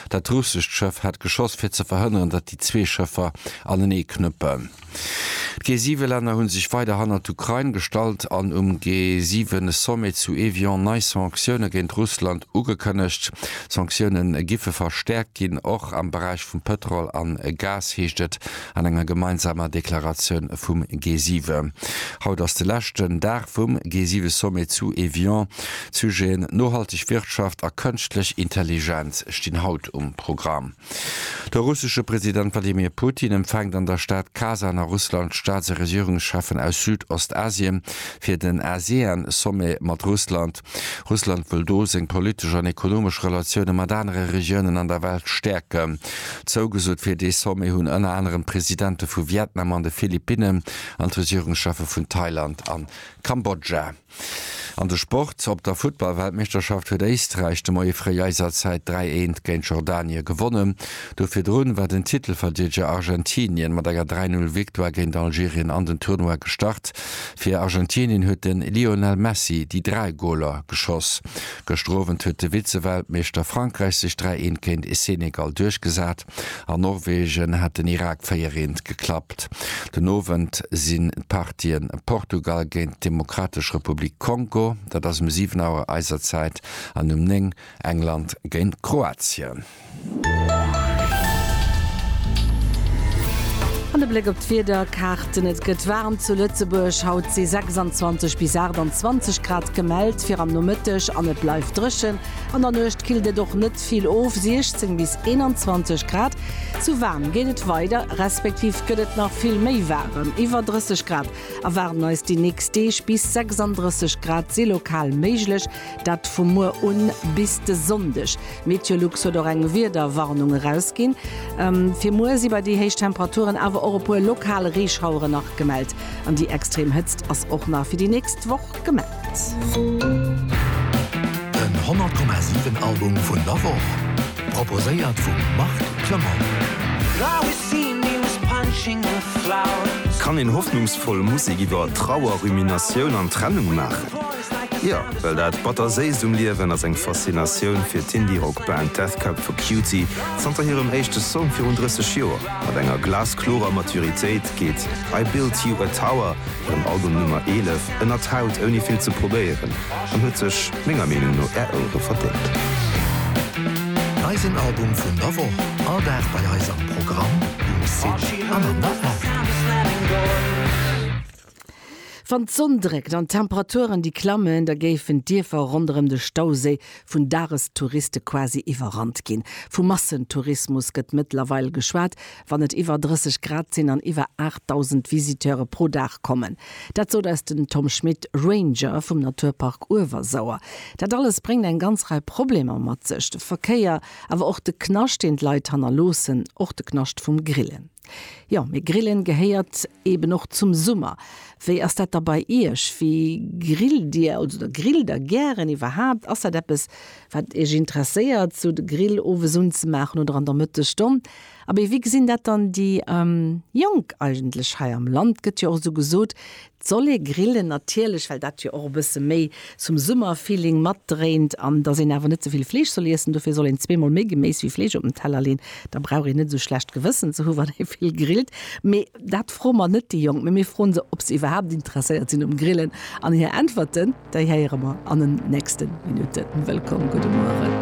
Dat russescht Schëff hat geschoss, fir ze verhënneren, datt déi zwee Schëffer anenee knëppen. D'G-Siwe-Länner hu sech weider hannert d'Ukrain gestallt an um G-Siwe-Sommet zu Evian nei Sanktioune géint Russland ugekënnegt. D'Sanktioune giffe verstäerkt ginn, och am Beräich vum Pëtrol a Gas, heescht et. An enger gemeinsamer Deklaratioun vum G7. Haut ass de leschten Dag vum G7-Sommet zu Evian. D'Sujeten nohalteg Wirtschaft a kënschtlech Intelligenz stinn haut um Programm. De russesche President Wladimir Putin empfänkt an der Stad Kasan a Russland d'Staats a Regierungscheffen aus Süd-Ostasien fir den ASEAN-Sommet mat Russland. Russland wëll do seng politesch an ekonomesch Relatioune mat anere Regiounen an der Welt stäerken. Zougesot fir dee Sommet hunn ënner anerem d'Presidente vu Vietnam an de Philippinnen an d'Regierungscheffe vun Thailand a Kambodscha. An de Sport, Op der Futtball-Weltmeeschterschaft huet Éisträich de Moie fréi eiser Zäit 3, 1 géint Jordanie gewonnen. Do virdrun war den Titelverdiedeger Argentinien mat enger 3, 0 Victoire géint Algerien an den Tournoi gestart. Fir Argentinien huet de Lionel Messi déi dräi Goler geschoss. Gëschter Owend huet de Vize-Weltmeeschter Frankräich sech 3 Eent géint Senegal duerchgesat. An Norwegen hat den Irak 4 Eent geklappt. Den Owend sinn d'Partië Portugal géint d'Demokratesch Republik Kongo, dat ass um 7 Auer eiser Zäit, an um 9 England géint Kroatien. An e Bléck op d'Wiederkaarten, Et gëtt waarm zu Lëtzebuerg, haut si 26 bis 28 Grad gemellt fir am Nomëtteg an et bleift dréchen. An der Nuecht killt et och net vill of, 16 bis 21 Grad. Zu waarm geet et weider, respektiv gëtt et nach vill méi waarem, iwwer 30 Grad erwaarden eis déi nächst Deeg. Bis 36 Grad si lokal méiglech, Dat vu muer un bis de Sonndeg. Meteolux huet och eng Wiederwarnung erausginn. Fir muer si bei déi héich Temperaturen awer och e puer lokal Reeschauere nach gemellt. An déi extrem Hëtzt ass och nach fir déi nächst Woch gemellt. Den 100,7 Album vun der Woch, proposéiert vum Marc Clement. Kann een hoffnungsvoll Musek iwwer Trauer, Ruminatioun an Trennung maachen? Jo, well dat Batter-Séisst um Liewen ass eng Faszinatioun fir d'Indie-Rock-Band Death Cab for Cutie. Zanter hirem éischte Song virun 30 Joer, mat enger glasklorer Maturitéit, geet I Built You a Tower, hirem Album Nummer 11, ënnert d'Haut ouni vill ze probéieren an huet sech menger Meenung no Är Ouere verdéngt. Eisen Album vun der Woch, all Dag bei eis am Programm, um Site an an der App. Wann d'Sonn dréckt an d'Temperaturen déi klammen, da géifen d'Dierfer ronderëm de Stauséi vun Dagestouriste quasi iwwerrannt ginn. Vu Massentourismus gëtt mëttlerweil geschwat, wann et iwwer 30 Grad sinn an iwwer 8.000 Visiteure pro Dag kommen. Dat sot eis den Tom Schmit, Ranger vum Naturpark Uewersauer. Dat alles bréngt eng ganz Rei Problemer mat sech, de Verkéier, awer och de Knascht, deen d'Leit hannerloossen, och de Knascht vum Grillen. Jo, mee Grillen gehéiert eben och zum Summer. Wéi ass dat da bei Iech? Wéi grillt Dir oder grillt Der gären iwwerhaapt? Ass dat eppes, wat Iech interesséiert, esou de Grill owes unzemaachen oder an der Mëttegstonn? Abee, wéi gesinn dat dann déi Jonk eigentlech hei am Land? Gëtt jo och esou gesot, Soll ee grillen, natierlech, well dat jo och e bësse méi zum Summerfeeling matdréint an dass een awer net ze vill Fleesch soll iessen. Dofir soll een zweemol méi Geméis wéi Fleesch op den Teller leen. Da brauch een net esou schlecht Gewëssen ze hu wann ee vill grillt. Mee dat froe mer net déi Jonk, mee mir froen se ob se iwwerhaapt interesséiert sinn um Grillen. An hir Äntwerten, déi héiere mer an den nächste Minutten. Wëllkomm, gudde Mueren.